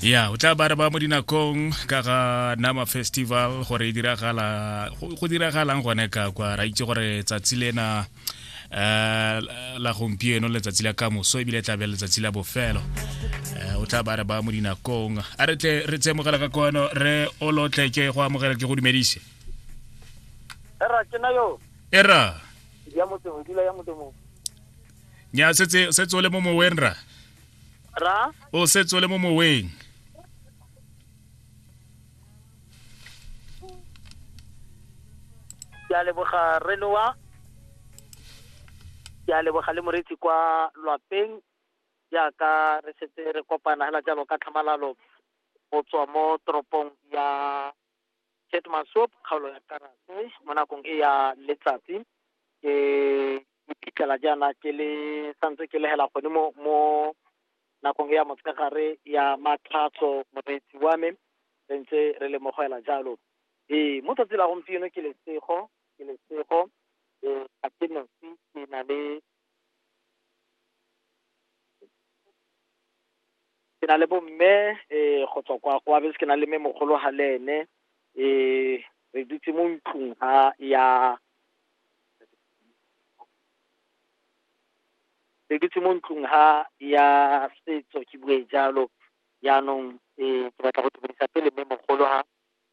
ya o tla bare ba mo dinakong ka ga nama festival gore e diragala go diragalang gone ka kwa ra itse gore tsatsi lena eh, la gompieno letsatsi la kamoso ebile tlabe letsatsi la bofelo eh, o tla bare ba mo dinakong a re tle re tsemogela ka kono re o lotle ke go amogela ke go dumedise era ke na yo era ya motho dula ya motho nya setse setse o le mo moweng ra ra o setse o le mo moweng ke a leboga renoa ke a leboga le moretsi kwa lwapeng jaaka re setse re kopana hela jalo ka tlhamalalo go tswa mo toropong ya Ketemasop, kgaolo ya Karase, mo nakong e ya letsatsi. Ke iphitlhela jaana ke le santse ke lehela gone mo mo nakong e ya motshegare ya matlhatso moreetsi wa me re ntse re le mo go ela jalo ee mo tsatsi la gompieno ke lesego ke lesego ee ga ke nosi ke na le ke na le bomme um go tswa kwa kwa bese ke na le mme mogolo ga le ene um re dutse mo ntlong ga ya re dutse mo ntlong ga ya setso ke bue jalo jaanong um ke batla go dumedisa pele mme mogolo ga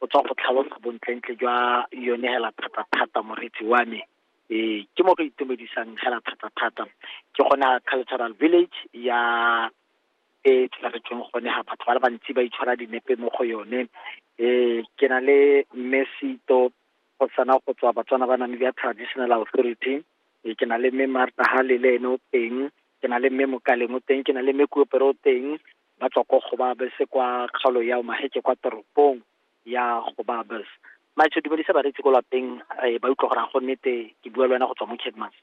o tswa go tlhalosa bontlentle jwa yone hela thata-thata moretsi wa me ee ke mo go itumedisang hela thata-thata ke gona cultural village ya e tshwaretsweng gone ga batho ba le bantsi ba itshwara dinepe mo go yone um ke na le mme seito go sana go tswa batswana ba name ya traditional authority e ke na le mme marta halele ene o teng ke na le mme mokaleng o teng ke na le mme kuopere o teng ba tswa ko Gobabes kwa kgaolo ya Omaheke kwa toropong ya Gobabes maitsho dumedisa bareetsi ko lapeng eh, ba utlwa gore a go nnete ke bua le wena go tswa mo Kedmas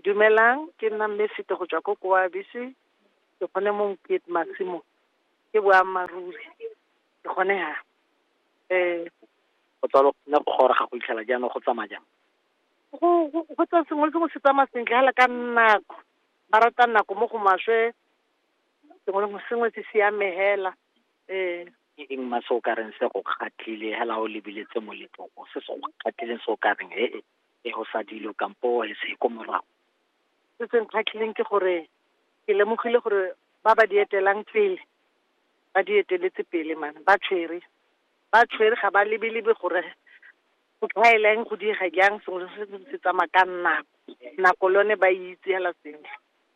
dumelang ke nna mme sete go tswa ko koabise ke gone mo mokete masimo ke boammaaruri ke gone ha um go tswa lo ne go goroga go itlhela jaanong go tsamaya jang go go- go tswa sengwe le sengwe se tsamaya sentle fela ka nako ba rata nako mo go maswe sengwe le sengwe se siame hela ee eng ma se o ka reng se go kgatlile hela o lebiletse moletlong o se se go kgatlileng se o ka reng e e go sa dilo kampo e se ko morago se se nkgatlhileng ke gore ke lemogile gore ba ba di etelang pele ba di eteletse pele mane ba tshwere ba tshwere ga ba lebelebe gore go tlhaela eng go diega jang sengwe se se tsamaya ka nako nako le yone ba itse hela sentle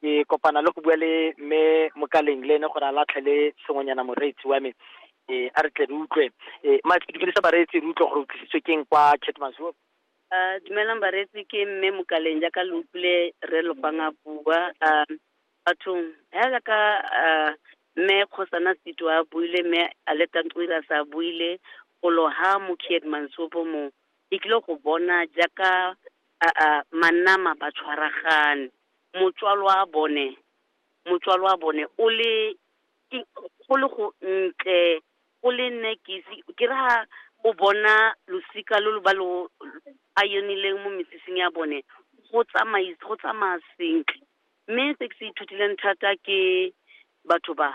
ke kopana le go bua le mme mokaleng le ene gore a latlhe le sengwenyana moreetsi wa me um a re tle re utlwe um ma ke dumedisa bareetsi re utlwe gore o tlisitswe keng kwa ketmazuo Uh, dumelang bareetsi ke mme mokaleng jaaka lo utlwile re lopang a bua uh, bathong ya jaaka uh, mme kgosana seto a buile mme a le tantoira sa buile go loha mo kiedmansopo mo e tlile go bona jaaka uh, uh, manama ba tshwaragane motswalwabone, motswalwabone o le, ke go le go ntle, go le nne ke ise, ke re ha , o bona losika lo lo ba lo , a yenileng mo mesifing ya bone, go tsamai-, go tsamaya sentle, mme se ke se ithutileng thata ke, batho ba,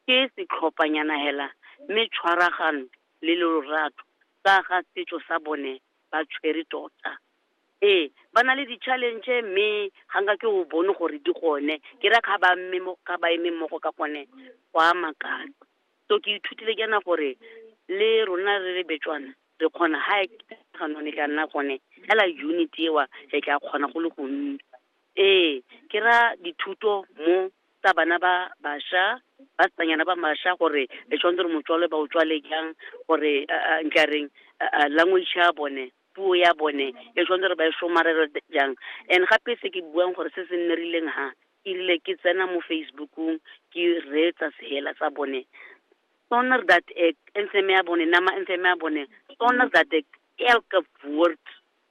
ke setlhophanyana hela, mme tshwaragano, le lorato, ka ga setso sa bone, ba tshwere tota. Ee, ba na le di-challenge mme, ga nka ke o bone gore di gone, ke ra ga ba mme mo, ga ba eme mmogo ka gone, go a makatsa. So ke ithutile jaana gore, le rona re le Betswana, re kgona ha e e ka nna gone, hela unity eo, re tla kgona go le gontsi. Ee, ke ra dithuto mo tsa bana ba basha, basimanyana ba masha gore e tshwanetse gore motswalwa ba o tswale jang, gore nka reng language ya bone. puo ya bone e tshwanetse gore ba e somarele jang. And gape se ke buang gore se se nnerileng ha erile ke tsena mo Facebookung ke reetsa sehela sa bone sonder dat ek inseme ya bone nama inseme ya bone sonder dat ek elke woord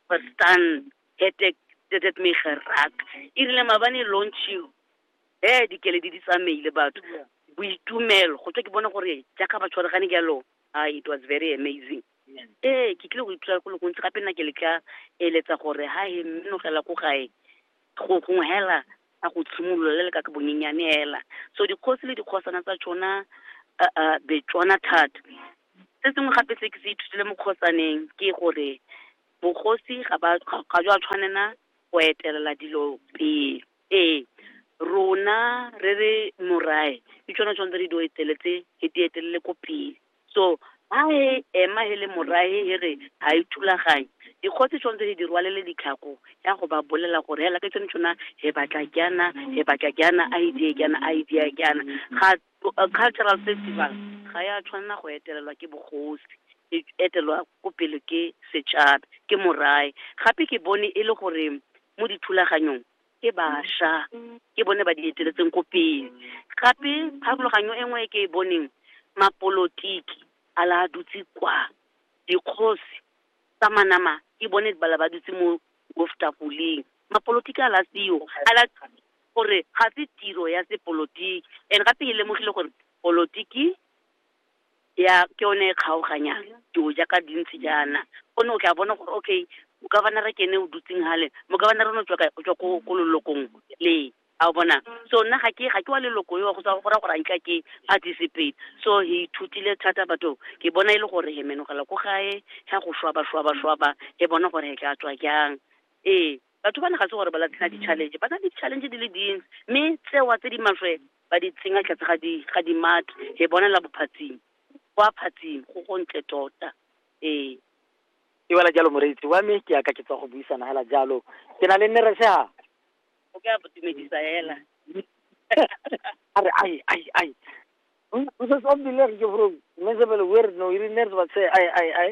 verstaan het ek dit het my geraak erile mabane launching he dikeledi di tsamaile batho boitumelo go tswa ke bone gore jaaka ba tshwaregane jalo ah it was very amazing ee ke tlile go ithuta go le gontsi gape nna ke le ka eletsa gore ha he mmenogela ko gae go gongwe hela a go tshimolola le le ka ke bonyenyane hela so dikgosi le dikgosana tsa tsona uh, betswana thata se sengwe gape se ke se ithutile mo kgosaneng ke gore bogosi ga ba ga jwa tshwanela go etelela dilo pele ee rona re re morae ke tsone tshwanetse re di eteletse re di etelele ko pele So ha he ema he le morahe he re ha e thulaganyo, dikgosi tshwanetse he di rwalele ditlhako ya go ba bolela gore hela ke tsone tshona he batla kyana, he batla kyana, a he diye kyana, a he diye kyana. Ga cultural festival ga ya tshwanela go etelelwa ke bogosi, e etelwa ko pele ke setšhaba, ke morahe. Gape ke bone e le gore mo dithulaganyong ke basha ke bone ba di eteletseng ko pele gape pharologanyo e nngwe e ke e boneng mapolotiki a la dutse kwa dikgosi tsa manama ke bone bala ba dutse mo boftafoleng mapolotiki a la seo a la gore ga se tiro ya sepolotiki and gape e lemogile gore polotiki ya ke yone e kgaoganyang dilo jaaka di ntse jaana one o tla bona gore okay governor ke ene o dutseng gale mo governor o ne o tswa kae? O tswa ko ko lelokong le a o bona so nna ga ke ga ke wa leloko yo go tswa go ra gore a nka ke participate so he ithutile thata batho ke bona e le gore he menogela ko gae ga go shwaba shwaba shwaba e bona gore he tla tswa jang ee batho ba ne ga se gore ba latlhela di-challenge ba na le di-challenge di le dintsi mme tsewa tse di maswe ba di tsenya tlhatse ga di ga di mathe e bonela bophatsing kwa phatsing go go ntle tota ee e wela jalo moreetsi wa me ke yaka ke tswa go buisana hela jalo ke na le nne re seha o ka botumedisa hela a re ai ai ai o se sombile re ke bro mme se bele wer no iri nne re ba se ai ai ai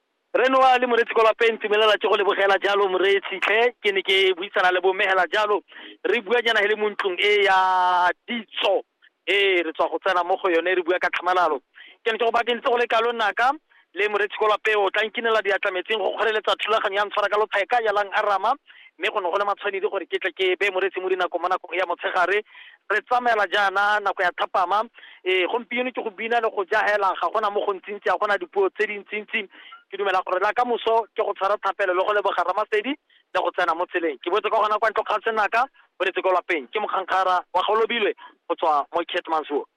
Rre Noa le Moreetsi kwa lapeng, Tumelela ke go lebogela jalo Moreetsi tlhe. Ke ne ke buisana le bomegela jalo, re bua nyana he le mo ntlong e ya ditso e re tswa go tsena mo go yone, re bua ka tlhamalalo. Ke ne ke go bakentse go le kalo naka le Moreetsi kwa lapeng, o tla nkinela diatla metsing go kgoreletsa thulaganyo ya ntshwara ka lotheka ya lang arama, mme go ne go le matshwanedi gore ke tle ke beye Moreetsi mo dinakong mo nakong ya motshegare, Re tsamaela jaana nako ya thapama. Ee, gompieno ke go bina le go ja hela, ga gona mo gontsintsi, ga gona dipuo tse dintsintsi. Ke dumela gore la ka moso ke go tshwara thapelo le go leboga Ramasedi le go tsena mo tseleng. Ke boetse ka gona kwa ntlo kgang senaka, boletse ko lapeng. Ke Mokgankgara wa Golobilwe go tswa mo Keetmanshoop.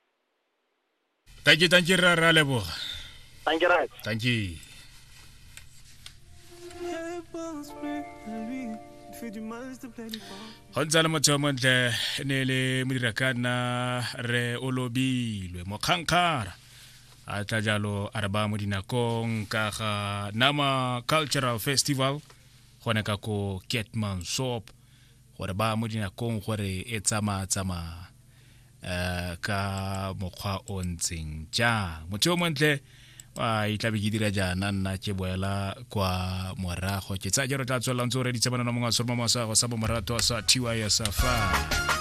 Thank you, thank you, Rara Leboga. Thank you, Raj. Thank you. go ntse le motho yo montle e ne e le modira ka nna re o lobilwe mokgankgara a tla jalo a re ba mo dinakong ka ga nama cultural festival gone ka ko ketman sop gore ba mo dinakong gore e tsamaya tsamaya um ka mokgwa o ntseng jang motho yo montle a itlabe ke dira jaana nna ke boela kwa morago ke tsaya jalo tla tswelelang tse o reditse manana mongwe wa solomo mosago sa bomorato sa tys fa